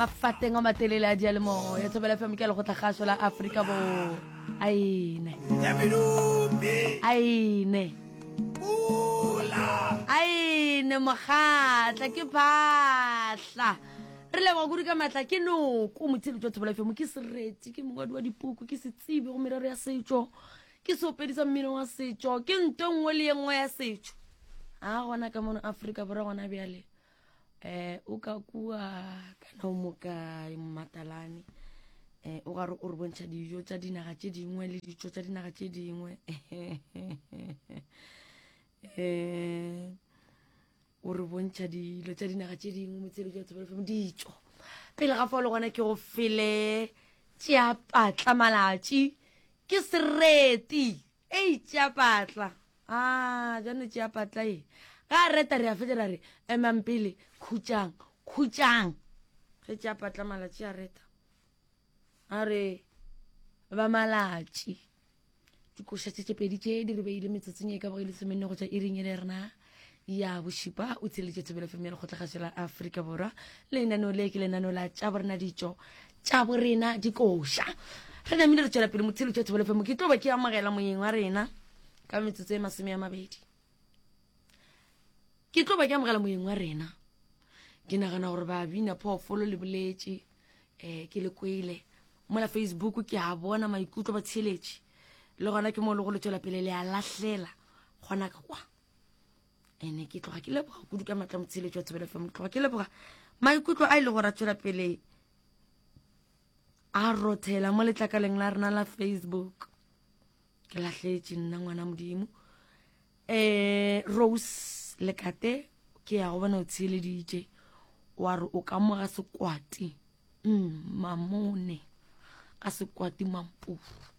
mafateng a matelele a dialemo ya thobela fm ke legotla gaso la aforika bo aene aene aene mogatla ke phatla re leboga kudu ka maatla ke noko motshedi jwa thobela fm ke sereti ke mongwadi wa dipuku ke setsibi go merero ya setšo ke seopedi sa mmino wa setšo ke nto nngwe le ye nngwe ya setšo a gona ka mono aforika borwa gona bjale eh o ka kua kana o moka mmatalane eh o gare o re bontšha dijo tša dinaga tše dingwe le ditšo tša dinaga tše dingwe eh o re bontšha dilo tša dinaga tše dingwe motshebetso wa tshebelefemo ditšo pele ga fao le gona ke go fele tšeapatla malatši ke sereti Ei, tšea patla. A, bjano tšea patla e. Ga a reta re a fetša ra re, emang pele, khutšang, khutšang. Ge tšea patla malatši a reta. A re, ba malatši. Dikoša tše tše pedi tše di re beile metsotsong e ka boge lesomenne go tšwa iring e le rena. ya bošipa o tsheletše thobelo fm ya lekgotlagašo la aforika borwa lenaneo le ke lenaneo la tša borena ditšo tša borena dikoša re namile re tšwela pele motshelo tša thobelo fm ke tlo ba ke amogela moyeng wa rena ka metsotso e masome ya mabedi ke tlo ba ke amogela moyeng wa rena ke nagana gore ba bina phoofolo le boletše um ke le kwele mola facebook ke a bona maikutlo ba tsheletše le gona ke mo le go le tšwela pele le a lahlela gona ka kwa ene ke tloga ke leboga kudu ka matla motsheletso wa thobelo fm tloga ke leboga maikutlo a ile e gore a tswela pele a rothela mo letlakaleng la rena la facebook ke latlhetse nna ngwana modimo um rose lekate ke ya go bona o tsheleditše wa re o ka moga sekwati mm, mamone ka sekwati mampuru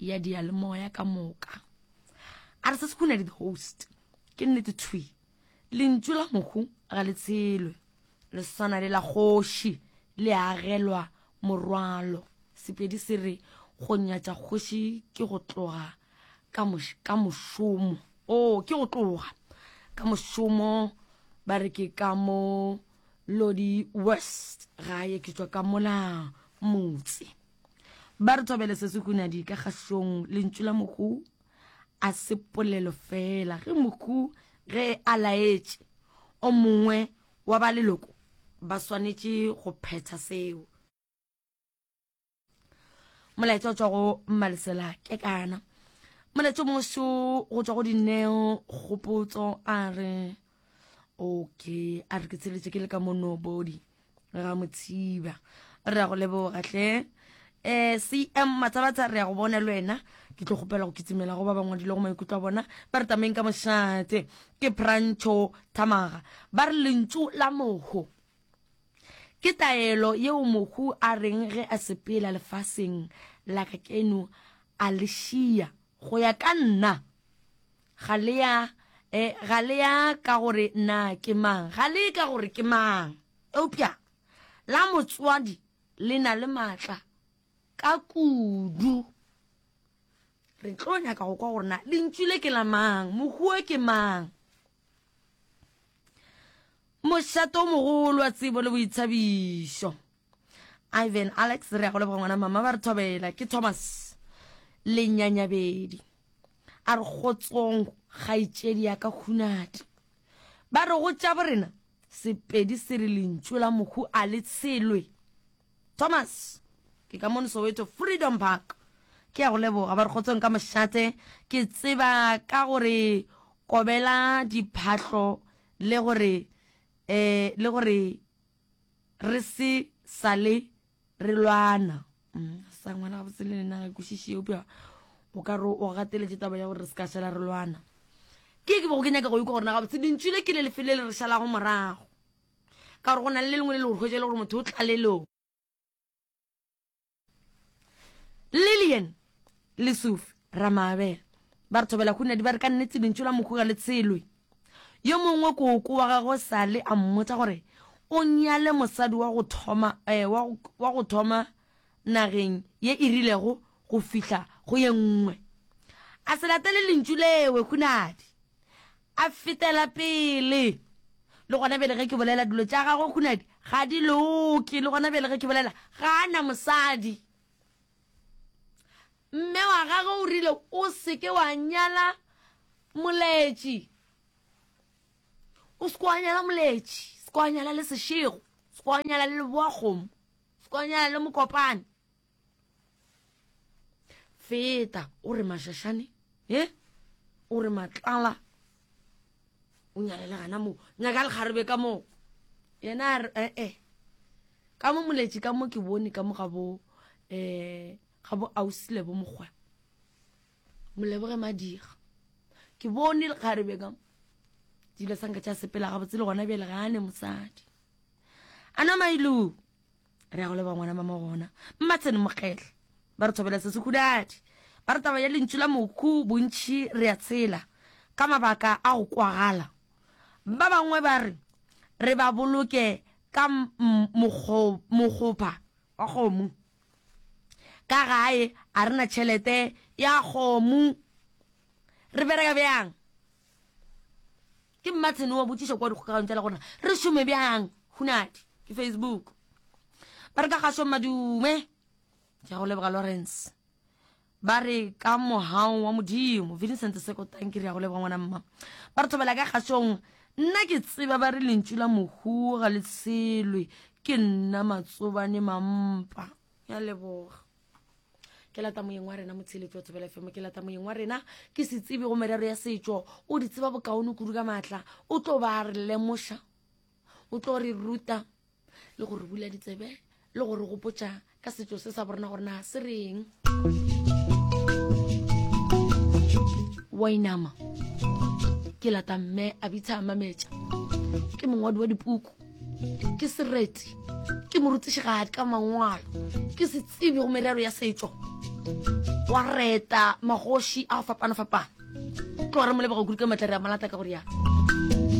ya diyalemoya ka moka a re se se kunadi the host ke nnete thwi lentšu la mohu ga le tshelwe le swana le la kgoši le agelwa morwalo sepedi se re go nyatša kgoši ke go tloga ka mošomo o oh, ke go tloga ka mošomo ba re ke ka mo lodi west gae ke tswa ka mola motse Ba re thobele se se hunadi ka kgahlong lentšu la mohu a se polelo fela. Ge mohu ge a laetše o mongwe wa ba leloko ba swanetše go phetha seo. Molaetša o tšwa go Mmalesela ke kana. Molaetša o mongwe šo go tšwa go dineo kgopotso a re. okay a re ke tsheletse ke le ka mono body ga motshiba re ya go leboga hle um cm matsabatsa re ya go bona le wena ke tlo gopela go kitsimela go ba bangwadile go maikutlo a bona ba re tameng ka mošate ke prancho thamaga ba re lentšu la mogo ke taelo yeo mohu a reng ge a sepela lefaseng la ka keno a le šia go ya ka nna Ga le ya, eh, ga le ya ka gore na ke mang, ga le ye ka gore ke mang. Eupša la motswadi le na le maatla ka kudu. Re tlo nyaka go kwa gore na lentšu le ke la mang, mohuo ke mang. Mošato o mogolo wa tsebo le boithabišo. Ivan, Alex, re ya go leboga ngwana mama ba re thobela ke Thomas lenyanyabedi a re gotsong kgaitšedi ya ka hunadi ba re go tša borena sepedi se re lentšu la mohu a le tshelwe Thomas ke ka mone Soweto Freedom Park ke ya go leboga ba re gotsong ka mošate ke tseba ka gore kobela diphahlo le gore eh le gore Re se sale re lwana. Umm, ga sa ngwana gabotse le nena ga kwešiše eupša o ka re o gateletše taba ya gore re se ka šala re lwana. Ke ye ke bego ke nyaka go ikwa gore na gabotse lentšu le ke le lefe le le re šalago morago. Ka gore go na le le lengwe le le go hwetša e le gore motho o tlalelong. lillian le sufi ramaabela ba re thobela hunadi ba re ka nnetse lentšu la mokhuga le tshelwe yo mongwe koko wa gagwe sale a mmotsa gore o nyale mosadi wa go thoma eh, wa go- wa go thoma nageng ye e rilego go fihla go ye nngwe a se latele lentšu lewe hunadi A fetela pele, Le gona bjale ge ke bolela, dilo tša gagwe hunadi ga di loke. Le gona bjale ge ke bolela, ga a na mosadi. Mme wa gagwe o rile, O se ke wa nyala moletši. O se ke wa nyala moletši. Se ke wa nyala le sešego. Se ke wa nyala le leboakgomo. Se ke wa nyala le mokopane. feta o re mašašane e o re matlala o nyalela gana moo nyaka lekgarebe ka moo yena a re ee eh, ka mo moletši ka mo ke bone ka mo ga bo um ga bo ausile bo mokgwa moleboge madiga ke bone lekgarebe ka dilo sanka tša sepela gabotse le gona bjele gane mosadi a na mailu re ya go leba ngwana mama gona mmatsene mokgetlha ba re thobela se sekhudadi ba re taba ya lentšu la mokhu bontšhi re ya tshela ka mabaka a go kwagala ba bangwe ba re re ba boloke ka mokgopa wa kgomo ka gae a re na tšhelete ya kgomo re bereka bjang Ke mmatshene wa botšiša kua dikgokagano tša le gore re šome bjang hunadi ke facebook ba re ka gašo madume ke ya go leboga lawrence ba re ka mohao wa modimo vincent seko tanki re ya go leboga ngwana mma ba re thobela ka gašong nna ke tseba ba re lentšu la mohuo ga le tshelwe ke nna matsobane mampa ya leboga ke lata moyeng wa rena motsheletsi wa tsebela fm ke lata moyeng wa rena ke se tsebe go merero ya setšo o di tseba bokaone kudu ka maatla o tlo ba re lemoša o tlo re ruta le gore bula ditsebe le gore gopotsa ka setšo se sa borena gore na se reng wainama ke lata mme a bitsha mametša ke mongwadi wa dipuku ke sereti ke morutišigadi ka mangwalo ke se tsebi go merero ya setšo wa reta magoši a go fapana-fapana tlo re molebaka kudu ka matlare a malata ka go riana